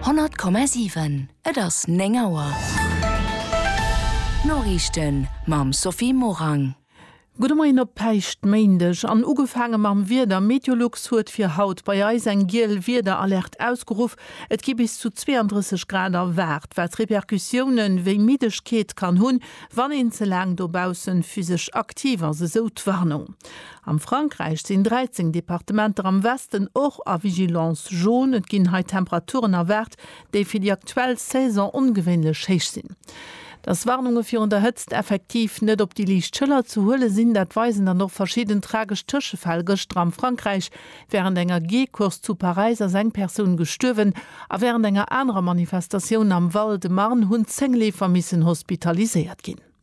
100,7 Et ass 9 Auer. D'Noriichten mam Sophie Morang. Gudde Moien op Päischtméindeg an ugefaange mam Wieder. Meteolux huet fir haut bei eis eng giel Wiederalerte ausgeruff. Et gi bis zu 32 Grad erwaart, wat Repercussioune wéi Middegkeet kann hunn, wann een ze laang dobausse physesch aktiv ass, esou d'Warnung. Am Frankräich sinn 13 Departementer am Westen och a Vigilance jaune. Et ginn hei Temperaturen erwaart, déi fir déi aktuell Saison ongewéinlech héich sinn. Dass Warnunge virun der Hëtzt effektiv net op déi liicht Schëller ze huele sinn, dat weisen dann och verschidden tragesch Tëschefäll. Gëschter am Frankräich wärend enger Geecourse zu Paräis ass eng Persoun gestuerwen a wärend enger anerer Manifestatioun am Val-de-Marne hunn 10 Leefer missen hospitaliséiert ginn.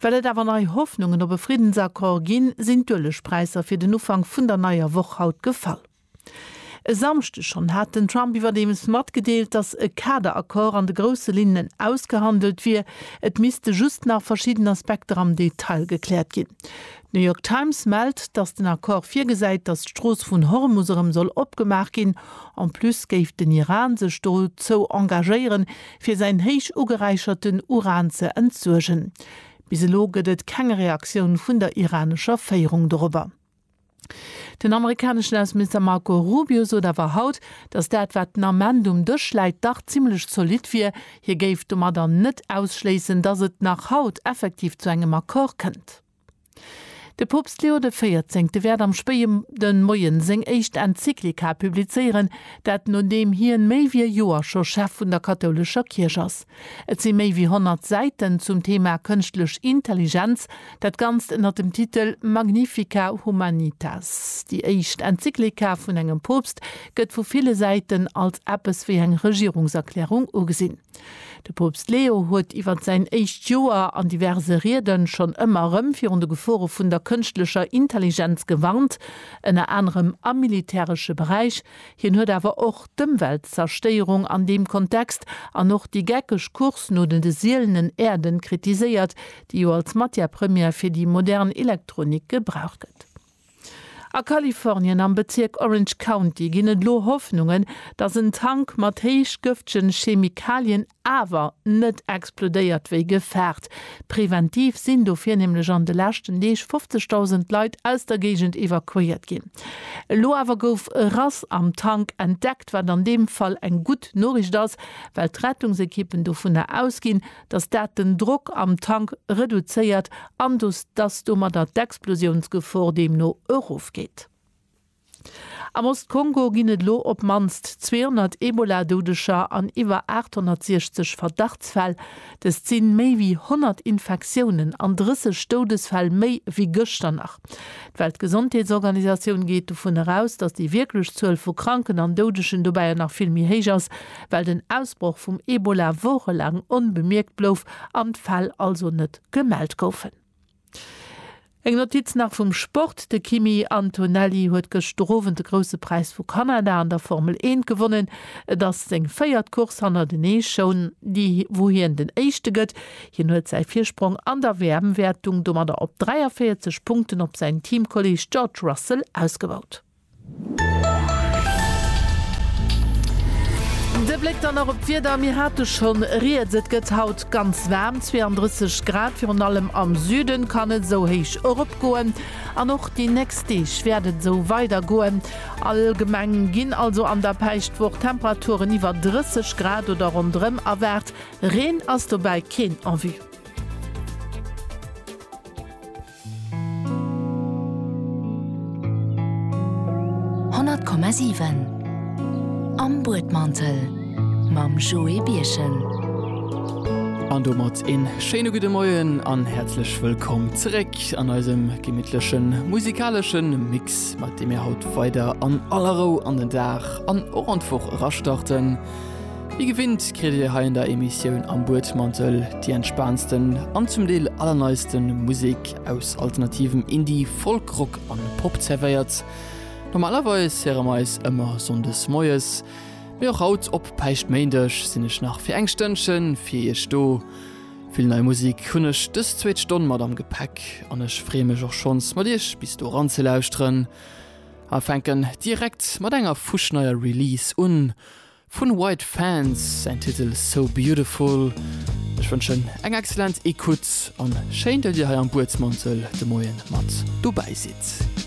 Well et awer nei Hoffnungen op e Friddensaccord ginn, sinn d'Uelegpräisser fir den Ufank vun der neier Woch haut gefall. E Samschdeg schonn hat den Trump iwwerdeems matgedeelt, datt e Kaderaccord an de grousse Linnen ausgehandelt wier, et misste just nach verschidden Aspekter am Detail gekläert ginn. D'New York Times mellt, datt den Accord virgesäit, datt d'Strooss vun Hormus erëm soll opgemaach ginn. En plus géif den Iran sech dozou engagéieren, fir säin héich ugeräicherten Uran ze entsuergen. Bis elo gëtt et keng Reaktioun vun der iranescher Féierung dorobber. Den amerikaneschen Ausseminister Marco Rubio sot awer haut, datt dat, wat den Ament um Dësch läit, dach zimmlech zolidd wier. Hie géif domadder net ausschléissen, datt et nach haut effektiv zu engem Accord kënnt. De Poopst Leo de Véierzéngte wäert am spéie de Moien seng éischt Enzyklika publizéieren, dat nodeem hien méi wéi e Joer scho Chef vun der kathoulescher Kierch ass. Et si méi wéi 100 Säiten zum Thema kënschtlech Intelligenz, dat Ganzt ënner dem Titel Magnifica Humanitas. Déi éischt Enzyklika vun engem Poopst gëtt vu ville Säiten als eppes wéi eng Regierungserklärung ugesinn. De Poopst Leo huet iwwer säin éischt Joer an diverse Riede schonn ëmmer erëm virun de Gefore vun der kënschtlecher Intelligenz gewarnt, ënner anerem am militäresche Beräich. Hien huet awer och d'Ëmweltzerstéierung an deem Kontext an och déi geckeg Course no den de sielenen Äerden kritiséiert, déi jo als Matière première fir déi modern Elektronik gebraucht gëtt. A Kalifornien am Bezierk Orange County ginn et elo Hoffnungen, datt en Tank mat héich gëftegen Chemikalien awer net explodéiert wéi gefaart. Preventiv sinn dofir nämlech an de leschten Deeg 50.000 Leit aus der Géigend evakuéiert ginn. Elo awer gouf e Rass am Tank entdeckt, wat an deem Fall eng gutt Noriicht ass, well d'Rettungsekippen dovunner ausginn, dass dat den Drock am Tank reduzéiert an dass domadder d'Explosiounsgefor deemno erofgeet. Am Ost-Kongo ginn et elo op d'mannst 200 Ebola-Doudeger an iwwer 860 Verdachtsfäll. Dëst si méi wéi 100 Infektiounen an 30 Doudesfäll méi wéi gëschter nach. D'Weltgesondheetsorganisatioun geet dovun eraus, dass déi wierklech Zuel vu Kranken an Doudegen dobäi nach vill méi héich ass, well den Ausbroch vum Ebola wochelaang onbemierkt blouf an d'Fäll also net gemellt goufen. Eng Notiz nach vum Sport, De Kimi Antonelli huet gëschter Owend de Grousse Präis vu Kanada an der Formel Eent gewonnen. Et ass seng véiert Course hannertenee schon, déi wou hien den Éischte gëtt. Hien huet säi Virsprong an der WM-Wäertung domadder op 43 Punkten op säin Teamkolleeg George Russell ausgebaut. De Bléck dann nach op d'Wieder, mir hate scho rieds, et gëtt haut ganz waarm, 32 Grad, virun allem am Süden kann et esou héich eropgoen an och déi nächst Deeg wäert et esou weidergoen. Allgemeng ginn also an der Päischtwoch Temperaturen iwwer 30 Grad oder ronderëm erwaart, Reen ass dobäi keen en vue. Honnert Komma siwen Am Buedmantel mam Joé Birchen. An domat een schéine gudde Moien an häerzlech wëllkomm zeréck an eisem gemittlechen musikaleschen Mix, mat deem mir haut weider an aller Rou an den Dag an och an d'Woch erastarten. Wéi gewinnt kritt Dir hei an der Emissioun Am Buedmantel déi entspaantsten an zum Deel allerneiste Musek aus alternativem Indie, Folk, Rock a Pop zerwéiert. Normalerweis héiere mer eis ëmmer Sonndes moies, mee och haut op Päischtméindeg sinn ech nach fir eng Stënnchen fir Iech do. Vill nei Musek hunn ech dës zweet Stonn mat am Gepäck an ech freeë mech och schonns mat Iech bis do eran ze lauschteren a fänken direkt mat enger fuschneier Release un. Vun White Fans säin Titel So Beautiful. Ech wënschen eng excellent Ecoute an schéin dat dir hei am Buedsmantel de Moien mat dobäi sidd.